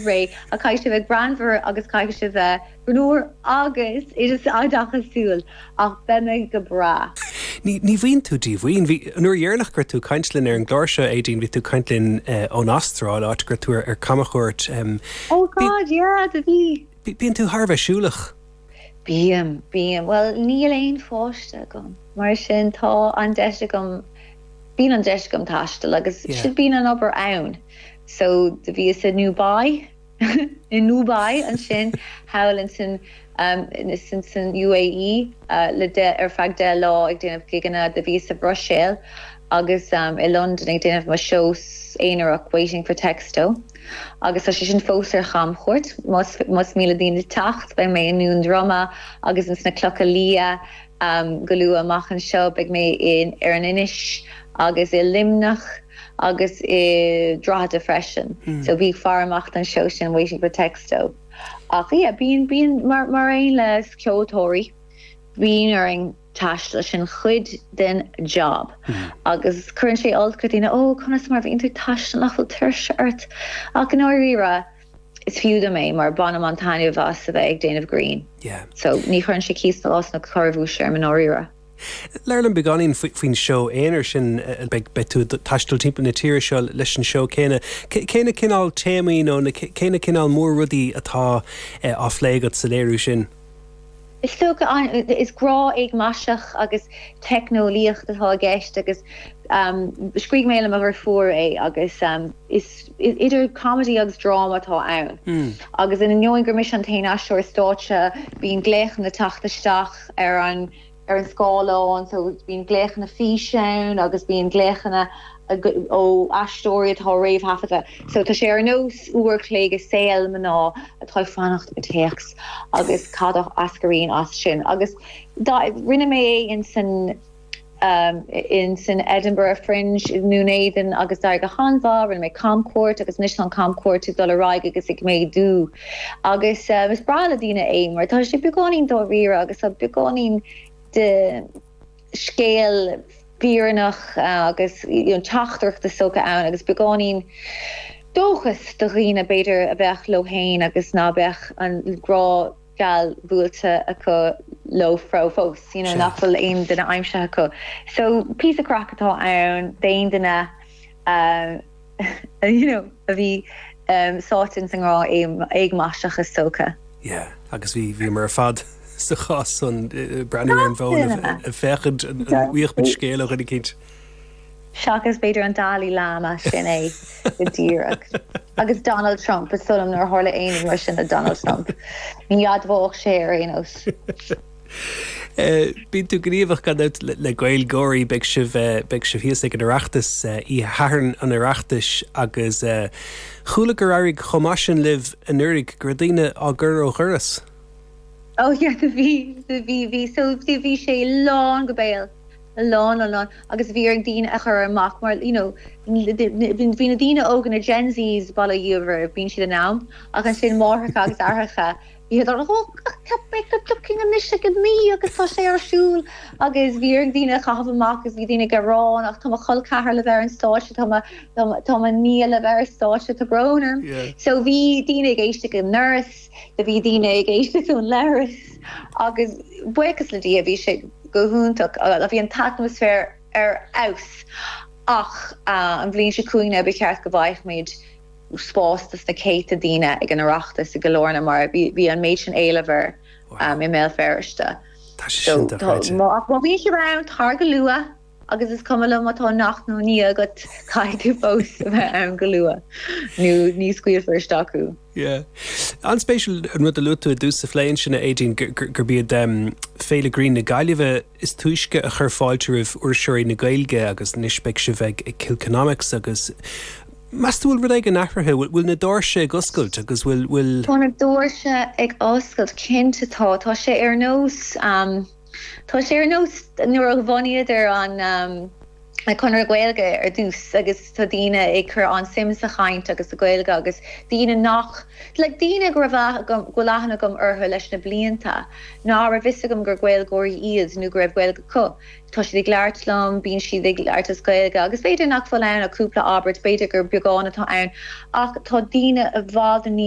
ré, ach caithfidh sé bheith greannmhar agus caithfidh sé bheith greannúr agus oideachasúil ach beidh mé go breá. Ní, ní bhíonn tú díomhaoin. Bhí, an uair dheireanach go raibh tú ag caint linn ar an gclár seo, Aedín, bhí tú ag caint linn ón Astráil, áit go raibh tú ar camchuairt. Oh God, yeah, do bhí. Bíonn tú thar a bheith siúlach. Bím, bím. Bhuel, níl aon pháiste agam, mar sin tá an deis agam, bíonn an deis agam taisteal agus yeah, bíonn an obair ann. So, do bhíos i nDubai, i nDubai ansin thall insan, insan, san UAE le deich, ar feadh deich lá ag déanamh gigeanna, do bhíos sa Bhruiséil agus i Londain ag déanamh mo seó aonarach Waiting for Texto agus tá sé sin fós ar chamchuairt, más, más mian le daoine teacht, beidh mé i nDún Droma agus insna Clocha Liatha, Go luath amach anseo beidh mé ar an in Inis agus i Luimneach agus i Drogheda freisin so bíodh faire amach don seó sin Waiting for Texto ach yeah bíonn bíonn mar mar aon le ceoltóirí bíonn orainn taisteal sin cuid den job agus cuireann sé olc ar dhaoine ó conas mar bhíonn tú ag taisteal nach bhfuil tuirse ort ach i ndáiríre Is fiú dom é mar bainim an-taitneamh as a bheith ag déanamh grinn. Yeah. So, ní chuireann sé cíos ná cás ná corrabhuais orm i ndáiríre. Labhair linn beagáinín faoin seó aonair sin, beidh tú ag taisteal timpeall na tíre seo leis an seó céanna. Cén cineál téamaí nó cén cineál mór-rudaí atá á phlé agat sa léiriú sin? Is grá éagmaiseach agus teicneolaíocht atá i gceist agus scríobh mé le mo dheirfiúr é agus is idir comedy agus dráma atá ann. Agus in ainneoin gur mise an t-aon aisteoir stáitse bíonn glaochanna ag teacht isteach ar an ar an scáileán so bíonn glaochanna físe ann agus bíonn glaochanna ó aisteoirí atá réamhthaifeadta so tá sé ar nós uair an chloig i saol mná atá ag fanacht ar théacs agus cad a eascraíonn as sin agus do rinne mé é insan insan Edinburgh Fringe i nDún Éideann agus d'éirigh go han-mhaith rinne mé camchuairt agus anois tá an chamchuairt ag dul ar aghaidh agus ag méadú. Agus is breá le daoine é mar tá sé beagáinín dáiríre agus tá beagáinín de scéal fírinneach agus teachtaireacht is dócha ann agus beagáinín dóchas do dhaoine b'fhéidir a bheadh leo féin agus ná beadh an grá geal buailte acu leo fós, you know, nach bhfuil aon duine aimsithe acu. So, píosa craic atá ann d'aon duine a. a bhí sáite ins an ngrá éagmaiseach tógtha. Yeah agus bhí bhí muid ar fad sa chás san breathnú ar an bhfón ag féachaint an bhfaigheadh muid scéal éicint. Seachas b'fhéidir an Dalai Lama sin é go díreach. Agus Donald Trump ba sula nuair tharla aon rud mar sin le Donald Trump ní admhódh sé é ar aon nós. Bíonn tú gníomhach gan dabht le GaelGáirí. Beidh sibh beidh sibh thíos ag an Oireachtas, Oíche Shathairn an Oireachtais agus chuala gur éirigh chomh maith sin libh anuraidh go raibh daoine á gcur ó dhoras. Ó yeah do bhí do bhí bhí so do bhí sé lán go béal. Lán lán lán agus bhí orainn daoine a chur amach mar you know bhí bhí na daoine óga na Gen Zs buíochas le Dia ambaist bíonn siad in am ach ansin máithreacha agus aithreacha Iad ar dhóigh ach tá Becky Duckin anois ag 9 agus tá sé ar siúl agus bhí orainn daoine a chaitheamh amach agus bhí daoine ag gearán ach tá mo chol ceathar libh ar an stáitse tá mo tá mo nia libh ar an stáitse tá brón orm. So bhí daoine ag éisteacht ón doras do bhí daoine ag éisteacht ón leithreas agus buíochas le Dia bhí sé go hiontach bhí an t-atmaisféar ar fheabhas ach an bhliain seo chugainn ba cheart go bhfaighfimid spás dos na céadta daoine ag an Oireachtas i gCill Airne mar bhí an méid sin éileamh air i mBéal Feirste. Tá sé sin dochreidte. Má bhíonn siad ann, tar go luath agus is cuma liom má tá neacht nó nia agat, caithfidh tú fós a bheith ann go luath nó ní scaoilfear isteach thú. Yeah. An-spéisiúil an rud a luaigh tú i dtús an phlé ansin, a Aideen, gurb iad Féile Grinn na Gaillimhe is túisce a chuir fáilte roimh fhuirseoirí na Gaeilge agus anois beidh sibh ag Kilkenomics agus Meas tú bhfuil rud éigin athraithe? Bhfuil na doirse ag oscailt agus bhfuil. Tá na doirse ag oscailt, cinnte tá. Tá sé ar nós, tá sé ar nós nuair a bhunaíodar Conradh na Gaeilge ar dtús agus tá daoine ag cur an-suim sa chaint agus sa Ghaeilge agus daoine nach, like daoine go raibh aithne agam, go bhfuil aithne agam orthu leis na blianta ná raibh fhios agam gur Gaeilgeoirí iad nó go raibh Gaeilge acu. Tá siad ag labhairt liom, bíonn siad ag labhairt as Gaeilge agus b'fhéidir nach bhfuil ann ach cúpla abairt, b'fhéidir gur beagán atá ann ach tá daoine i bhfad níos.